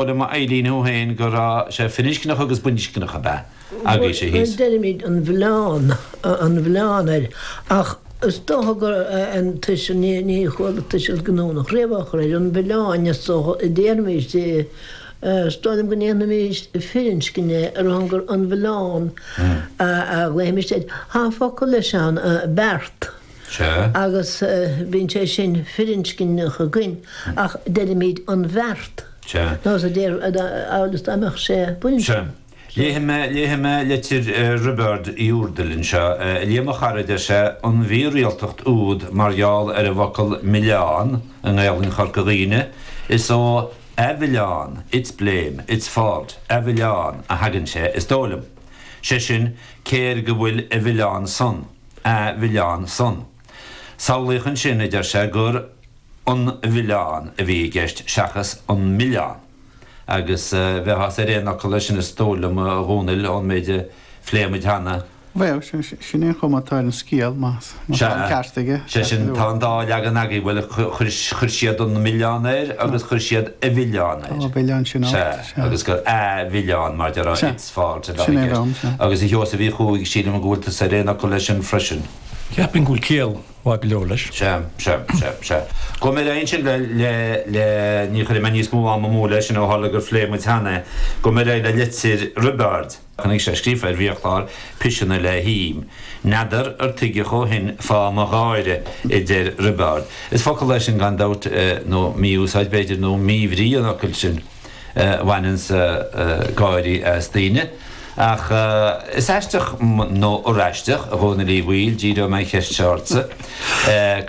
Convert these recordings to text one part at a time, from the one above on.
Dar le m'ailíniú féin go raibh sé firinscneach agus baininscneach ab ea agis é thíos. Deirimid an mhilleán, an mhilleán air, ach is dócha gur an tuiseal ní chuala tuiseal giniúnach riamh air, an mhilleáin, is dócha, a déarfaimis. Is dóigh liom go ndéanfaimis firinscne ar a shon gur an mhilleán a ghlaothaimis air. Tá focal leis ann, beart. Sea. Agus bíonn sé sin firinscneach againn ach deirimid an bheart. Sea. Nós a deir amhail is dá mbeadh sé baininscneach. Sea. Léifidh mé, léifidh mé litir Roibeaird Uí Úrdail anseo. A Liam a chara, a deir sé, an mhírialtacht úd mar gheall ar an bhfocal milleán i nGaelainn Chorca Dhuibhne, is ó a mhilleán, its blame, its fault, a mhilleán, a thagann sé, is dóigh liom. Sé sin, cé air go bhfuil a mhilleán san? mhilleán san. Samhlaíodh ansin, a deir sé, gur an mhilleán a bhí i gceist seachas an milleán, agus bheifeása ar aon fhocal leis sin is dóigh liom, a Dhónaill, ón méid a phléigh muid cheana. Bhuel, sin é an chuma atá ar an scéal, má tá an ceart aige. Sea. Sea sin, tá an dá leagan againn, bhuel, chuir siad an milleán air agus chuir siad a mhilleán air. Á, a mhilleán sin, á. Sea, agus gur a mhilleán, mar a deir an. fáilte, a Bheagir. Agus a Sheosaimh Uí Chuaig, sílim go bhfuil tusa ar aon fhocal leis sin freisin. Cheapfainn go bhfuil ciall mhaith go leor leis. Sea, sea, sea, sea. Chomh maith le é sin, le, le, le, ní chuirfidh mé níos mó ama amú leis sin ó tharla gur phléigh muid cheana é, chomh maith le, le litir Roibeaird, chonaic sé scríofa ar bhiachlár piseanna le him, N'fheadar ar tuigeadh ó shin fáth mo gháire, a deir Roibeárd. Is focal é sin gan dabht, nó mí-úsáid b'fhéidir, nó mí-bhrí an fhocail sin. bhaineanns gáirí as daoine. Ach is aisteach, nó ar aisteach, a Dhónaill Uí Bhaoill, díreoidh mé an cheist seo ortsa.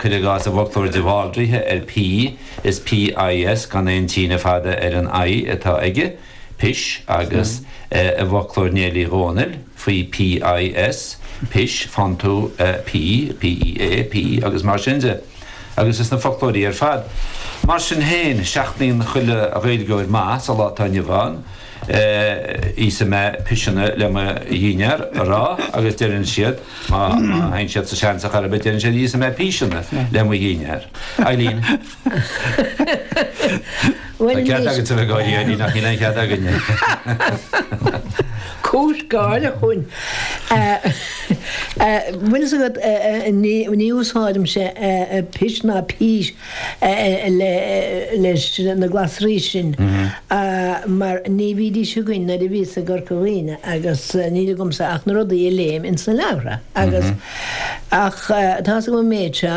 Cuir i gcás, i bhfoclóir de Bhaldraithe ar pea, is PIS, gan aon tsíneadh fada ar an I, atá aige, pis, agus i bhfoclóir Néill Uí Dhónaill faoi PIS, pis, faigheann tú, P, PEA, pea, agus mar sin de. agus is na foclóirí ar fad. Mar sin féin, seachnaíonn chuile Ghaeilgeoir maith sa lá atá inniu ann íosfaidh mé piseanna le mo dhinnéar a rá agus deireann siad, má théann siad sa seans ar chor ar bith, deireann siad íosfaidh mé píseanna le mo dhinnéar. Eibhlín. Tá cead agat tú ag éirí uirthi, nach níl aon chead againne. Cúis gáire chughainn. Bhfuil fhios agat, ní úsáidimse pis ná pís leis na glasraí sin, mar ní bhídís againn nuair a bhíos i gCorca Dhuibhne agus níl agamsa ach na rudaí a léim ins na leabhartha agus, ach, tá's agam an méid seo.